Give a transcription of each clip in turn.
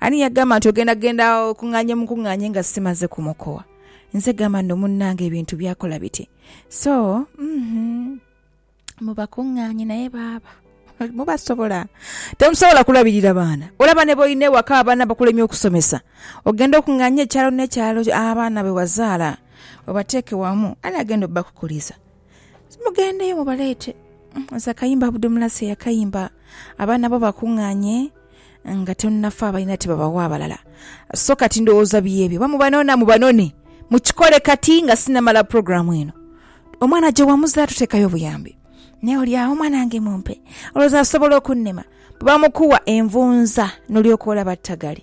Ani yagamba nti ogenda genda okung'anye mukung'anye nga simaze kumukowa? Nze gamba nno munnange ebintu byakola biti so uhmm mubakung'anye naye baaba mubasobola temusobola kulabirira baana olaba ne boyina ewaka abaana bakulemye okusomesa ogende okung'anye ekyalo n'ekyalo abaana bewazaala obateeke wamu ani agenda obakukuliza Mugendeyo mubaleete. Nze akayimba Abdu Mulasi eyakayimba abaana bo bakung'anye nga tonafa abalina tibabawa abalala so kati ndowooza byebyo oba mubanona mubanone mukikole kati nga sinamala puroguramu eno omwana gye wamuza tuteekayo obuyambi naye oli awo omwana wange mumpe olowooza asobola okunnema bwe bamukuwa envunza n'olyoka olaba ttagali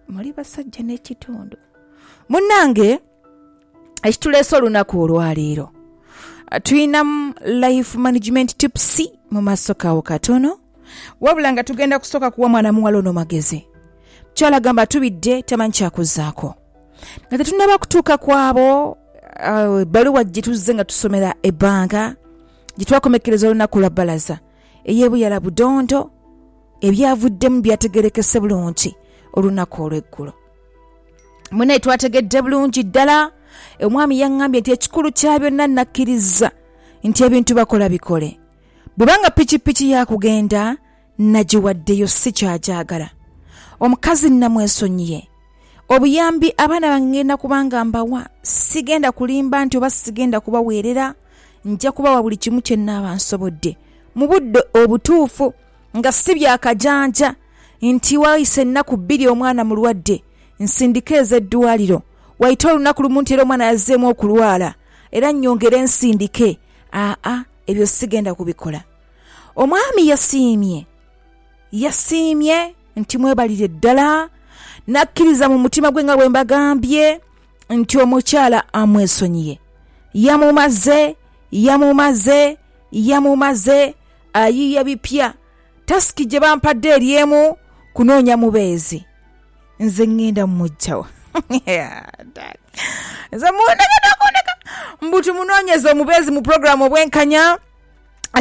muli basajja n'ekitundu munnange ekituleese olunaku olwaleero tulinamu life management tips mu maaso kawo katono wabula nga tugenda kusooka kuwa mwana muwala ono magezi mukyala gamba atubidde tamanyi kyakuzaako nga tetunaba kutuuka kwabo ebbaluwa uh, gyetuzze nga tusomera ebbanga gyetwakomekkereza olunaku lwa bbalaza eyebuyala budondo ebyavuddemu byategerekese bulungi olunaku olw'eggulo Mwena twategedde bulungi ddala. Omwami yaŋŋambye nti ekikulu kya byonna nnakkiriza nti ebintu bakola bikole. Bw'eba nga pikipiki ya kugenda, nnagiwaddeyo si ky'agyagala. Omukazi nnamwesonyiye. Obuyambi abaana bange ng'enda kuba nga mbawa, sigenda kulimba nti oba sigenda kubaweerera, nja kubawa buli kimu kye nnaaba nsobodde mu budde obutuufu nga si bya kajanja. nti waise ennaku bbiri omwana mulwadde nsindike eze ddwaaliro, waite olunaku lumu nti era omwana yazzeemu okulwala era nnyongere nsindike, aa ebyo sigenda kubikola. Omwami yasiimye yasiimye nti mwebalire ddala n'akkiriza mu mutima gwe nga bwe mbagambye nti omukyala amwesonyiye. Yamumaze yamumaze yamumaze ayiiya bipya. tasiki gye bampadde eri emu kunoonya mubeezi. Nze ngenda mmuggya wa? Nze mundeke n'okundeka. Mbu tumunoonyeze omubeezi mu pulogulaamu obwenkanya.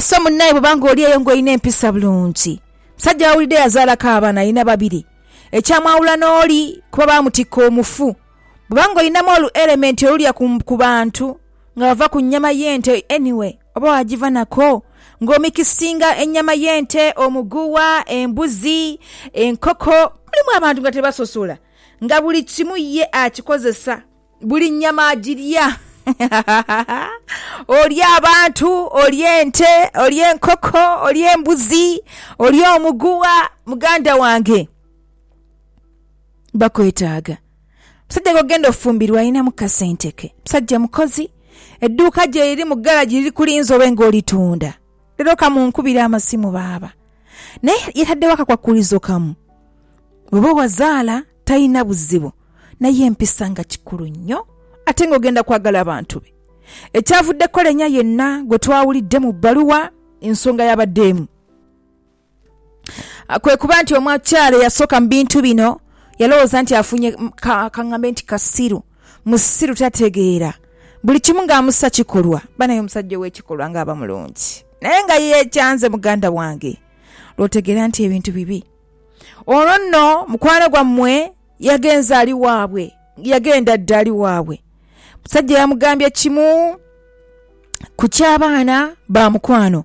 So munnaye bw'oba ng'oli eyo ng'olina empisa bulungi, musajja w'awulidde yazaalako abaana, alina babiri, ekyamwawula n'oli kuba baamutikka omufu. Bw'oba ng'olinamu olu elementi olulya ku bantu nga bava ku nnyama y'ente, anyway. Oba waagivanaku ng'omikisinga ennyama y'ente, omuguwa, embuzi, enkoko. Mulimu abantu nga tebasosola nga buli kimu ye akikozesa. Buli nnyama agirya. Olya abantu, olya ente, olya enkoko, olya embuzi, olya omuguwa. Muganda wange bakwetaaga. Omusajja gw'ogenda ofumbirwa alinamu kasente ke. Musajja mukozi, edduuka gye liri mu garagi liri kulinze obe ng'olitunda. Leero ka munkubire amasimu baaba. Naye yataddewo akakwakkulizo kamu, Bw'oba owazaala talina buzibu naye empisa nga kikulu nnyo ate ng'ogenda kwagala bantu be. Ekyavuddeko Lenya yenna gwe twawulidde mu bbaluwa ensonga y'abadde emu. kwe kuba nti omukyala eyasooka mu bintu bino yalowooza nti afunye ka ngambe nti kasiru, musiru tategeera buli kimu nga amusa kikolwa. Banaye omusajja ow'ekikolwa nga aba mulungi naye nga yeekyanze muganda wange lw'otegeera nti ebintu bibi. Olwo nno mukwano gwammwe yagenze ali waabwe, yagenda dda ali waabwe. Omusajja yamugambye kimu ku ky'abaana ba mukwano.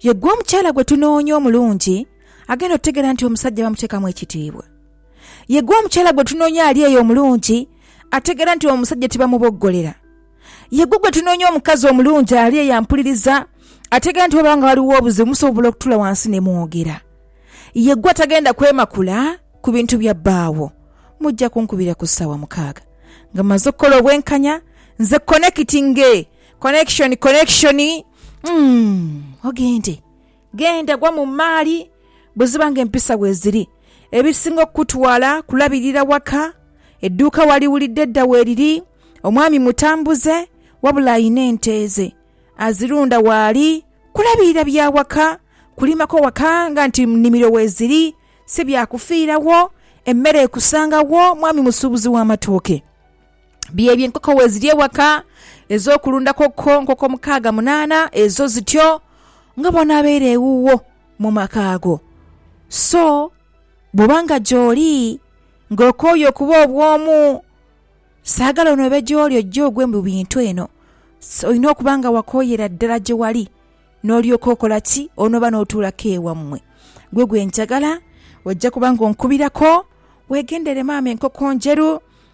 Ye gwe omukyala gwe tunoonya omulungi agenda otutegeera nti omusajja bamuteekamu ekitiibwa. Ye gwe omukyala gwe tunoonya ali eyo omulungi ategeera nti omusajja tibamuboggolera. Ye gwe gwe tunoonya omukazi omulungi ali eyo ampuliriza ategeera nti bwebaba nga waliwo obuzibu musobola okutuula wansi ne mwogera. Ye gwe atagenda kwemakula ku bintu bya bbaawo. Mujja kunkubira ku ssaawa mukaaga nga mmaze okukola obwenkanya nze konekitinge, connection, connection. Umm, ogende, genda gwa mu mmaali buziba ng'empisa bweziri. Ebisinga okukutwala kulabirira waka. Edduuka waliwulidde dda weriri. Omwami mutambuze wabula alina ente ze azirunda waali. Kulabirira bya waka, kulimako waka nga nti mu nnimiro weziri, si bya kufiirawo. Emmere ekusanga wo, mwami musuubuzi w'amatooke. byebyo enkoko weziri ewaka ezokulunda kokko nkoko mukaaga munaana ezo zityo nga bwonaabeire ewuwo mu maka ago. So bwoba nga gyoli nga okooye okuba obwomu saagala onoobe gyoli ojje ogwe mu bintu eno olina okuba nga wakooyera ddala gyewali n'olyoka okola ki onooba n'otuulako ewammwe. Gwe gwe njagala ojja kuba nga onkubirako weegendere maama enkoko ndheru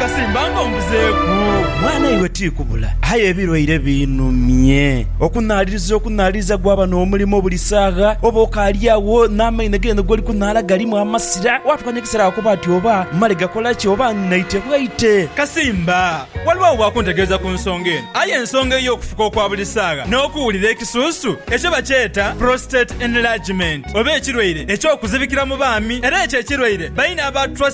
Kasimba nga ombuzeeku. Mwana iwe ti kubula. Aye ebilwaire biinhumye. Okunhaaliriza okunhaaliriza gwaba n'omulimo buli saagha, oba okaali agho n'amaino g'eno g'oli kunhaala galimu amasira. Waatuuka n'ekiseera wakoba ati, Oba mmale gakola ki? Oba nnaite bwaite? Kasimba, Ghaligho oba akuntegeeza ku nsonga eno. Aye ensonga ey'okufuka okwa buli saagha n'okuwulira ekisuusu, ekyo bakyeta prostate enlargement, oba ekirwaire eky'okuzibikira mu baami. Era ekyo ekirwaire baine aba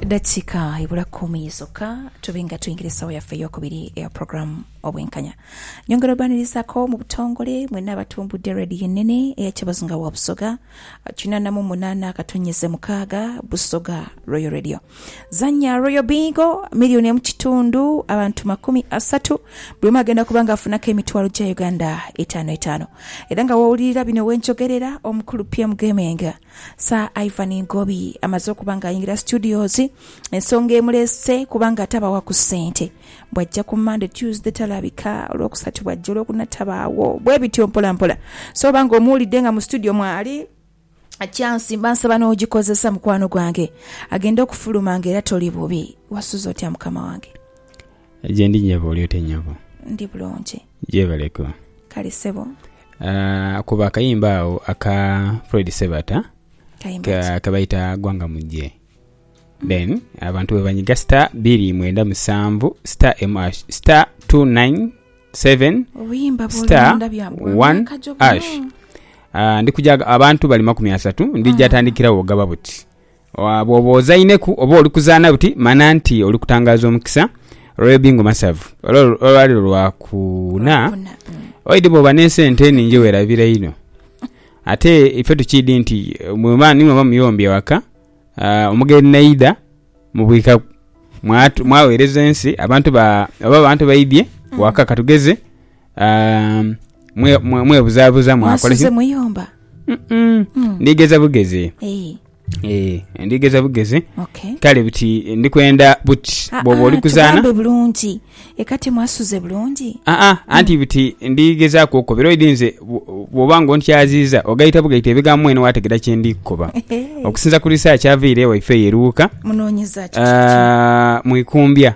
Edakika ebula kumi zokka tube nga tuingira esawa yaffe eyokubiri eya program Obwenkanya. Nyongera obanirizaako mu butongole mwena abatumbudde Radio Enene eya Kyabazinga wa Busoga, kinana mu munana akatonyeze mukaaga Busoga Royal Radio. Zanya Royal Bingo, milioni emu kitundu abantu makumi asatu, buli omu agenda kuba nga afunaku emitwalo gya Uganda etaanu etaanu. Era nga wowulirira bino wenjogerera, omukulu PM Gaming, Sir Ivan Ngobi amaze okuba nga ayingira studios, ensonga emuleese kuba nga tabawa ku sente. Bwajja ku Monday, Tuesday talabika, olwokusatu bwajja, olwokuna tabaawo, bwebityo mpola mpola. So oba nga omuwulidde nga mu studio mwali. Chance mba nsaba nogikozesa mukwano gwange agenda okufuluma nga era toli bubi wasuze otya mukama wange. Gyendi nyabo oli otya nyabo. Ndi bulungi. Gyebaleko. Kale sebo. Aah kuba akayimba agho aka Fred Sebata kebayita gwanga mujje. Then abantu bwebanyiga star biri mwenda musanvu star emu ash star 297 Obuyimba bw'oli star munda bya bwa one myaka gyo guno. ash Ah, ndi kuja abantu bali makumi asatu ndija Ah. tandikirawo ogaba buti Wa- bwoba ozaineku oba oli kuzaana buti mana nti oli kutangaaza omukisa Royal Bingo Masavu Olwa- olwaliro lwakuna Kuna, mm. oidi bwoba n'esente eningi werabira inho ate ife tukiidi nti eh, mweba nimweba muyombi ewaka ah, omugeni naidha mubwika mwatu- mwawereza ensi abantu ba oba abantu baidhye Mm. waka katugeze ah, mwe- mwe- mwebuzabuza mwakola mwasuze ki muyumba Mm-mm. Mm. ndigeza bugeze Eh, Eh, ndigeza bugeze okay kale buti ndikwenda buti Ah, bwoba ah, oli kuzaana tugambe bulungi Eka timwasuze bulungi? Aa, anti buti ndi gezaaku okukoba, era oidhi nze bw'oba nga ontyaziiza ogaita bugaita ebigambo mwene waategera kye ndi kukoba. Okusinza ku risaakyi avaire ewaife eyo e Luuka, mu Ikumbya,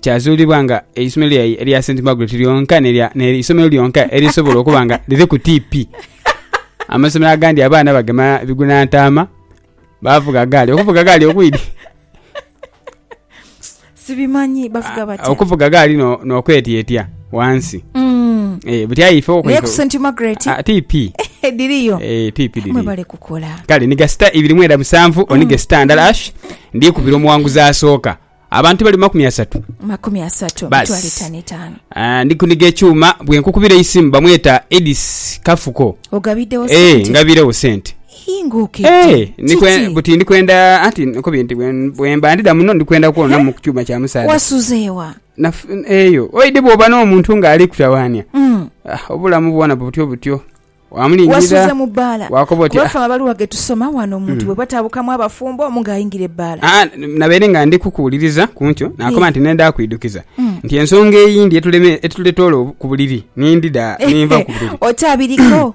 kyazuulibwa nga eisomero lyaye erya St Margaret lyonka n'eisomero lyonka erisobola okuba nga liri ku tiipi. Amasomero agandi abaana bagema biguna ntaama, bavuga gaali. Okuvuga gaali okwidhi? sibimanyi bavuga ah, batya okuvuga gaali no, nokwetyetya wansi mm. e, eh, butyaife naye ku st margaret a, ah, tp eh, diriyo e, eh, tp diri mwebale kukola kale niga sita ibiri mwenda musanvu mm. onige sita ndala ash ndikubira omuwanguzi asooka abantu bali makumi asatu makumi asatu mitwalo etaano etaano ah, ndi kuniga ekyuma bwenkukubira eisimu bamweta edis kafuko ogabiddewo e, ngabirewo sente Hinguka iti, Ee, ndi kwe- Kiki? buti ndi kwenda anti nkubye nti bwe- bwemba ndidha muno ndi kwenda kwonamu ku kyuma kya musaadha Wasuzeewa. Naf- eyo oidhi bwoba n'omuntu ng'ali kutawaania Mm. ah, obulamu bwona butyo butyo Wasuze wamulindirira mu bbaala. wakoba oti Kuba ah, ffe abali wage tusoma wano omuntu bwe batabukamu abafumbo omu ng'ayingira ebbaala. ah, nabaire nga ndi kukuwuliriza ku nkyo nakoba Ye. nti nenda kuidukiza Mm. nti ensonga eyindi etuleme- etuletola obu- ku buliri nindidha ninva ku buliri Otabiriko.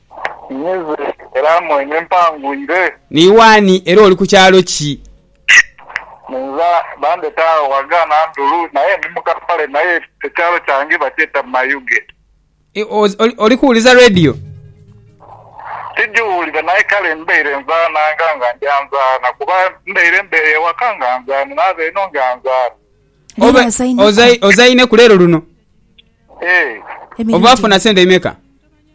Ninyize era mwene mpangwire. Ni waani era oli ku kyalo ki? Ninza bandheta agho ghaga Nandulu naye ndi mu kapale naye ekyalo kyange bakyeta Mayuge. Oli kuwuliza radio? Tigiwulira naye kale mbaire nzaananga nga ndi anzaana kuba mbaire mbeere ewaka nga nzaana naaba eno nga nzaana. Ozaineku leero luno? Oba afuna sente imeka?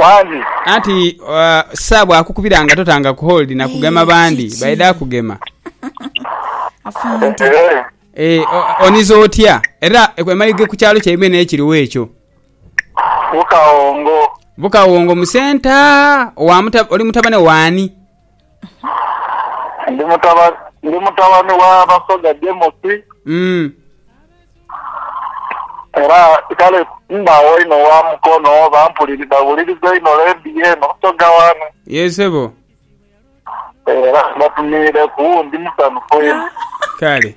Wangi. Anti uh, sa bwakukubira nga totanga ku hold na kugema bandi kiki? baidha kugema afande Eh, e, o- oniza otya era emaige ku kyalo kyaimwe n'ekiriwo ekyo Bukawongo. bukawongo musenta owa muta- oli mutabane waani Ndi mutaba, ndi mutabani wa Basoga Jemusi, Mm. era kale mbaagho inho wa Mukono, bampuliri, bawuliriza inho leediyo eno Busoga wano. Yee sebo. Era mbatumiireku, ndi musanhufu inho. Kale.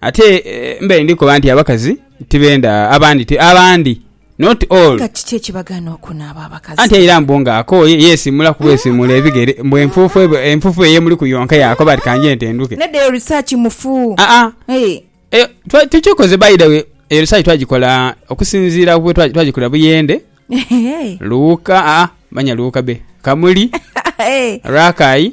Ate mbaire ndi koba nti abakazi tibenda abandi ti abandi not all. Nga kiki ekibagaana okunaaba abakazi? Anti aira mbu nga akooye yeesiimula ku bwesiimuula ebigere mbu enfuufu ebo enfuufu eyo emuliku yonka yaakoba ati kanjje nte nduke. Nedda eyo research mufu. Aa Eeh. Eyo twa tukikoze by the way eyo research twagikola okusinziira ku bwetwa twagikolera Buyende, Ehe. Luuka aa manya Luuka be, Kamuli, Eeh. Rakai.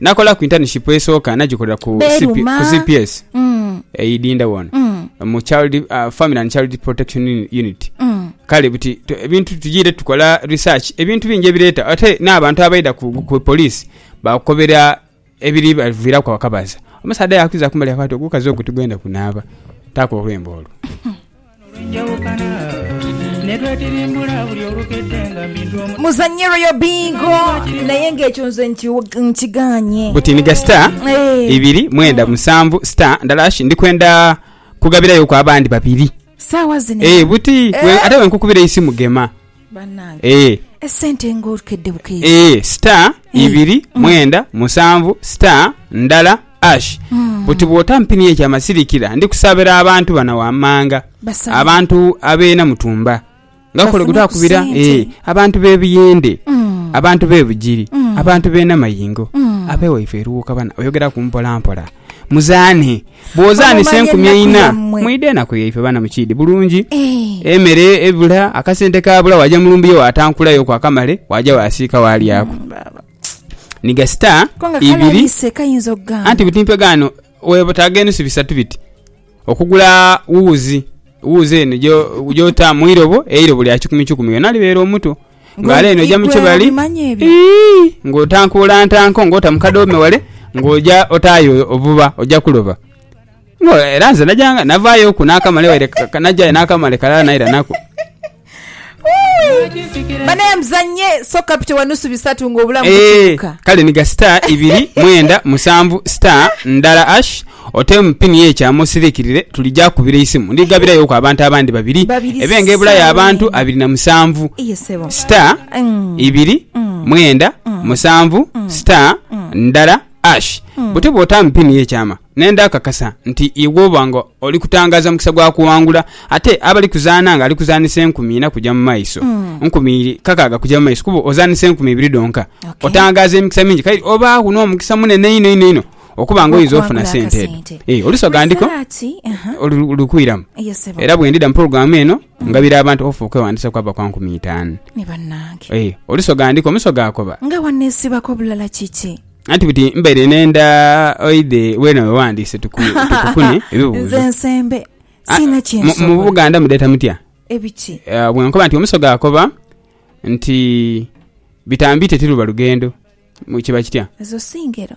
Nakola ku intanishipu esooka nagikolera ku Beruma. CPS Mm. eidinda wona Mm. mu child, uh, Family and Child Protection Uni- Unit. Mm. Kale buti tu- ebintu tugiire tukola research ebintu bingi ebireeta ate n'abantu abaidha ku, ku police bakukobera ebiri baviiraku abakabaza. Omusaadha yakuza kumbali yakoba ati ogukazi ogwo tigwenda kunaaba. Taaka olwembo olwo. Muzanye royal bingo naye nga ekyo nze nki- nkiganye butiniga star Eh. ibiri mwenda musanvu star ndala hash ndikwenda kugabirayoku abandi babiri saawa zino Eh, buti we- ate wenkukubira eisimu gema Banange Eeh esente nga okedde bukedde. Eeh star ibiri mwenda musanvu star ndala ash buti bwota mpini ye kyama silikira ndi kusabira abantu bana wamanga abantu abe namutumba nga kole guta kubira eeh abantu be buyende abantu be bugiri abantu be namayingo abe waife eruwuka bana oyogeraku mpola mpola. Muzaane. Bwozaanisa enkumi eina, mwidha enaku yaife baana mu kiidhi bulungi. Emere ebula, akasente kaabula, waaja mu lumbuye waatankulayo ku akamale, waaja waasiika waalyaku. Ni gasita ibiri, anti buti mpegaano weetaaga enu si bisatu biti. Okugula wuuzi, wuuzi eno gy'ota mu irobo, eirobo lya kikumiikikumi yona libeere omuto. Ghala eno oja mu kibali, ii, ng'otankuula ntanko ng'ota mu kadoome wale, ng'oja otaayo obuba, oja kuloba. Era nze najanga, navaayoku n'akamale waire, najayo n'akamale kalala naira nako. banaye muzanye soka pite wa nusu bisatu nga obulamu eh, bukibuka kale niga star ibiri mwenda musanvu star ndala ash otemu pini yekyama osirikirire tulija kubira isimu ndigabirayoku abantu abandi babiri ebenga ebulayo abantu abiri na musanvu star mm. ibiri mm. mwenda mm. musanvu star ndala Ash, butyo bw'otampimye ekyama, naye ndakakasa nti iwe oba nga oli kutangaaza mukisa gwa kuwangula. Ate abali kuzaana ng'ali kuzaanisa enkumi ina kuja mu maiso, nkumi kakaaga kuja mu maiso, kuba ozaanisa enkumi ibiri dhonka. Okay. Otangaaza emikisa mingi, kale obaagho n'omukisa munene inho inho inho okuba nga oyinza ofuna Okuwangula sente edho. akasente. Eh, oluso ghandiko Praise the Lord. Aha. olu- lukwiramu. Yes, sebo. Era bwe ndidha mu programu eno, Ngabira abantu ofa okweghandiisa kwava kwa nkumi itaanu. Ni banange. Ee, oluso ghandika omuso gaakoba. Nga waneesibako bulala kiki? Anti buti mbaire nenda oidhe weena we waghandiise tukukune ebibuuzo. Nze nsembe, siina kye nsobola. Mu Buganda mudheeta mutya? Ebiki? Bwe nkoba nti omuso gaakoba nti bitambiite tiruba lugendo kiba kitya? Ezo si ngero.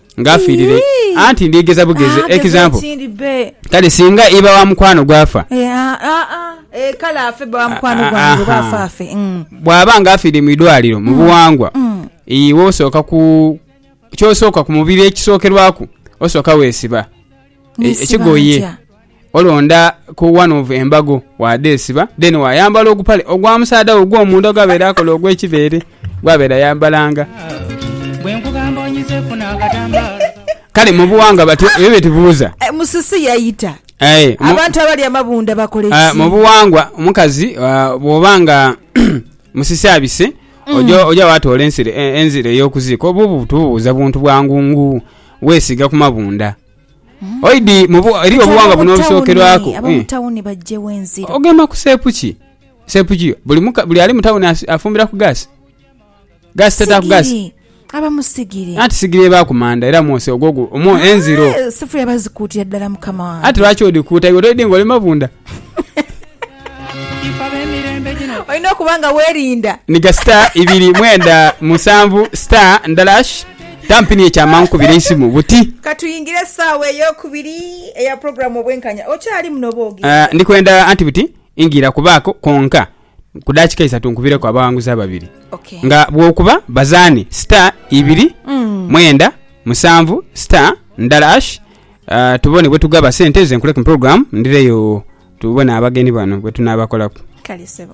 nga afiirire, anti ndyegheza bughezi. Ah, Example, kale singa iba wa mukwano gwe afa, eh, ah, ah, eh, kale afe bba wa mukwano gwange oba afe afe. Mm. Bw'aba nga afiire mu idwaliro mu mm. buwangwa, mm. iwe osooka ku kyosooka ku mubiri ekisookerwaku osooka weesiba e, ekigoye Olonda ku one of embago wadhesiba then wayambala ogupale ogwa musaadha wo ogwomunda ogwabeere akola ogwekibeere gwabeere ayambalanga. Kale mubuwangwa batyo ebyo byetubuuza. Eh, Musisi yaita Aye, mu- abantu abali amabunda bakola Ah, mu ekisiibo. buwangwa omukazi ah, bwoba nga musisi abise Mm. oja oja watoola ensire- eh, enzira ey'okuziika obuubu tububuuza buntu bwa ngungu weesiiga ku mabunda Oidi mu bu, eriyo Kati obuwangwa buno ab'omu tawuni, obusookerwaku. ab'omu Eh. tawuni baggyewo enziro. Ogema ku seepu ki? Seepu ki? Buli muka, buli ali mu tawuni asi- afumbira ku gaasi? Gaasi tataaku gaasi. Sigiri. Abamu sigiri. Anti sigiri eba ku manda era mwose ogwo gu- omwo enziro. Eh, Sifulya bazikuutira ddala mukama wange. Anti lwaki odhikuuta iwe toidhi ng'oli mabunda? Olina okuba nga welinda. Niga star ibiri mwenda musanvu star ndala ash tampini ekyamangu kubira eisimu buti. Katuyingire saawa eyokubiri eya program obwenkanya okyalimu nobwogi. Ah, ndikwenda anti buti ingira kubaako konka. Ku daakika isatu nkubireku abaghanguzi ababiri nga bw'okuba bazaane star ibiri mwenda musanvu star ndala hash ah, tubone bwetugaba sente nze nkuleku mu program ndireyo tubone abageni bano bwetunaabakolaku. Kale sebo.